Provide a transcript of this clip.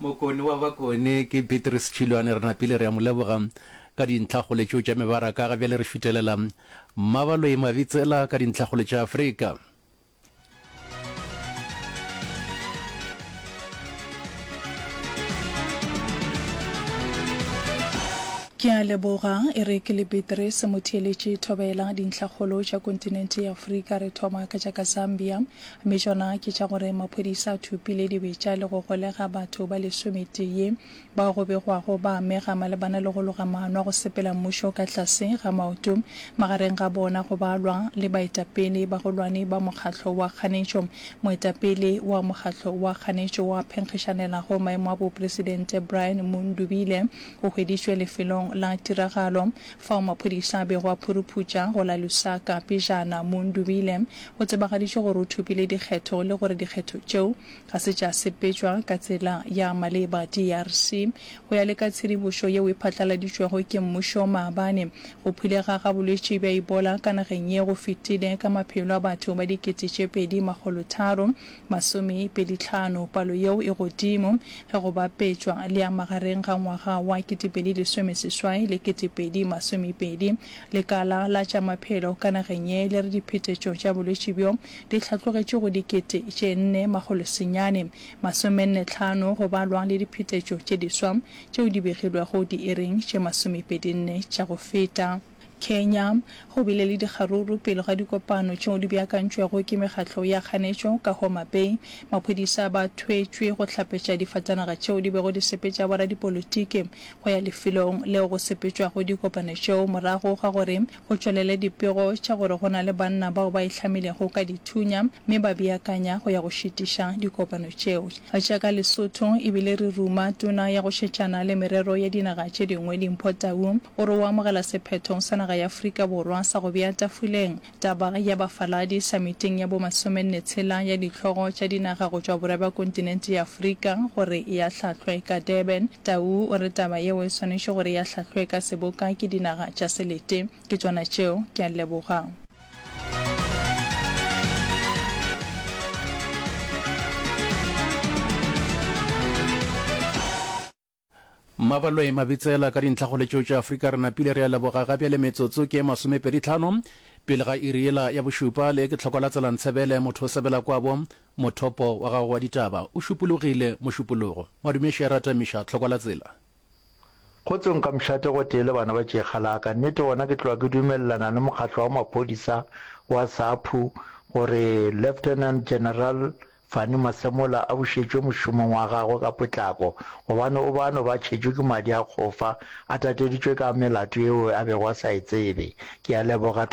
Mokone wa bakone ke Beatrice Tšhilwane. Re napile re a mo leboga ka dintlhakgole tšeo tša mebaraka. Ga bjale re šutelela Mmabaloi Mabitsela ka dintlhakgole tša Afrika. Ke a leboga, e re ke le Beatrice Motheeletši Thobela. Dintlhakgolo tša kontinente ya Afrika re thoma ka tša ka Zambia. Mme tšona ke tša gore maphodisa a thopile dibetša le go golega batho ba lesometee bao go begwago ba amega malebana le go loga maano a go sepela mmušo ka tlase ga maoto magareng ga bona go balwa le baetapele bagolwane ba mokgatlo wa kganetšo. Moetapele wa mokgatlo wa kganetšo wa phenkgišanelago maemo a bopresidente Brian Mundubile o hweditšwe lefelong la tiragalo. Fao maphodisa a bego a phuruphuša go la Lusaka pejana mo Ndubile, go tsebagaditšwe gore o thopile dikgetho le gore dikgetho tšeo ga se tša sepetšwa ka tsela ya maleba DRC. Go ya le ka tshedibošo yeo e phatlaladitšwego ke mmušo maabane, go phulega ga bolwetši bja Ebola ka nageng ye go fetile ka maphelo a batho ba dikete tše pedi makgolo tharo, Masomepedi tlhano, palo yeo e godimo ge go bapetšwa le ya magareng ga ngwaga wa ketepedi lesome seswai le ketepedi masomepedi. Lekala la tša maphelo ka nageng ye le re diphetetšo tša bolwetši bjo di hlatlogetše go dikete tše nne makgolo senyane masomenne tlhano go balwa le diphetetšo tše diswa tšeo di begilwego diiring tše masomepedi nne tša go feta. Kenya, go bile le dikgaruru pele ga dikopano tšeo di beakantšwego ke mekgatlo ya kganetšo ka Homa Bay. Maphodisa ba thwetšwe go hlapetša difatanaga tšeo di bego di sepetša boradipolotiki go ya lefelong leo go sepetšwago dikopano tšeo morago ga gore go tšwelele dipego tša gore go na le banna bao ba ihlamilego ka dithunya mme ba beakanya go ya go šitiša dikopano tšeo. Tša ka Lesotho e bile re ruma Tona ya go Šetšana le Merero ya Dinaga tše Dingwe Dimpho Tau gore o amogela sephetho sa naga ya Afrika Borwa sa go bea tafoleng taba ya bafaladi samiting ya bo masomenne tshela ya dihlogo tša dinaga go tšwa borwa bja kontinente ya Afrika gore e ahlahlwe ka Durban. Tau o re taba yeo e swanetše gore e ahlahlwe ka seboka ke dinaga tša selete ke tšona tšeo. Ke a leboga. Mabaloe Mabitsela ka dintlha go letšo tša Afrika re napile re a leboga ga bjale metsotso ke masomepedi tlhano pele ga iri ela ya bošupa le ke tlhoko la tselantshebele motho o sebela kwabo mothopo wa gago wa ditaba o šupologile mošupologo madume šera tamiša tlhoko la tsela Kgotse nka mšate gotee le bana ba tšeega la ka. Nnete gona ke tloga ke dumelelana le mokgatlo wa maphodisa wa SAPHU gore Lieutenant General Fanny Masemola a bušetšwe mošomong wa gagwe ka potlako gobane o bano ba tšhetšwe ke madi a kgofa a tateditšwe ka melato yeo a bego a sa e tsebe. Ke a leboga.